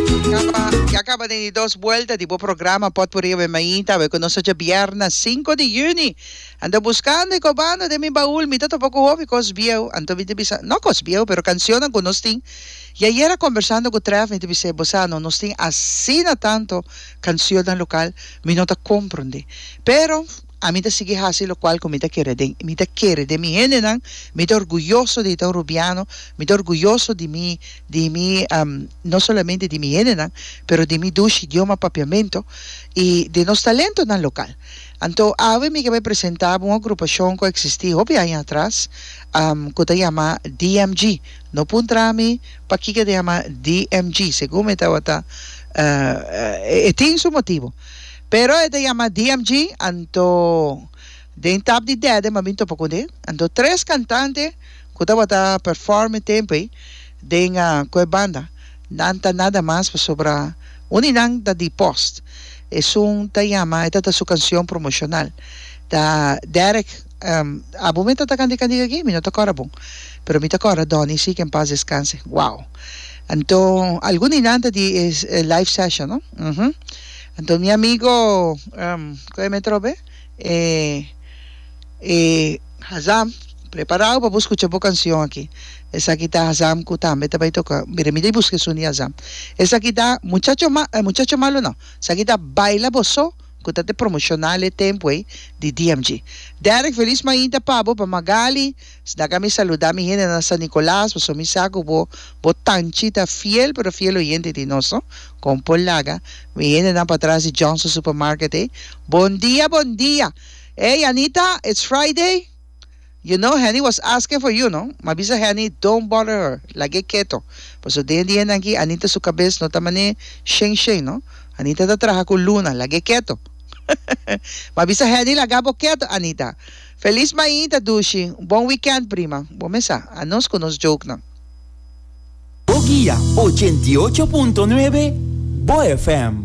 Caba, ya caba den di dos buelta di bo programa Pot Por Riba Maí, ta aweh cu nos oca Bierna sinku di Juni. Ando buscando y cobando den mi baul mi ta topa cu hopi cos bieu, anto mi ta bisa, no cos bieu pero cancionnan cu nos tin. Y ayera conversando cu Tref mi ta bis'e, bo sa no, nos tin asina tanto cancionnan local, mi no ta comprundi. Pero. Ami ta sigui hasi lokual ku mi ta kere den mi ta kere den mi hendenan, mi ta orguyoso di ta un rubiano, mi ta orguyoso di mi di mi no solamente di mi hendenan pero di mi dushi idioma papiamentu i di nos talentonan lokal. Anto awe mi ke bai presentá bo un agrupashon ku a eksistí hopi aña atras ku ta yama DMG. No puntra mi pakiko e ta yama DMG, segun mi tabata e tin su motibu. Pero e ta yama DMG, anto den tap di dède m'a bin topa ku dé. Anto tres kantante ku tabata perform e tempu ei den ku e banda, nan ta nada mas pasobra un di nan ta di Post. Esun ta yama, e ta ta su kanshon promoshonal. Ta Derek, Abo mi ta ta kandé kandé aki? Mi no ta kòrda bon. Pero mi ta kòrda Dòni sí, ke en pas deskanse. Wow! Anto algun di nan ta di e live session, no? Uhum. Anto mi amigo cu e me trobe e e Hazam preparao pa bo scucha bo cancion aki esaki ta Hazam cu tambe ta bay toca bira mi ta y busca e suni Hazam esaki ta muchacho ma muchacho malo no esaki ta baila bo so cu ta te promocional e tempo ey di DMG Derek feliz mainta pa bo pa Magali. Sna ka mi saluda mi hende na San Nicolas paso mi sa cu bo bo tanchi ta fiel pero fiel oyente di nos no con por laga mi hende nan patras di Johnson Supermarket ey bon dia bon dia ey Anita it's Friday you know Henny was asking for you no ma bisa Henny don't bother her lag'e keto paso den di hendan aki Anita su cabes no ta mane shen shen no Anita ta traha cu Luna lag'e keto ma bisa Henny laga bo keto Anita. Feliz mañita dushi, un bon weekend prima, bo mesa a nos cu nos joke nan. Bo guia ochenta y ocho punto nuebe, bo FM.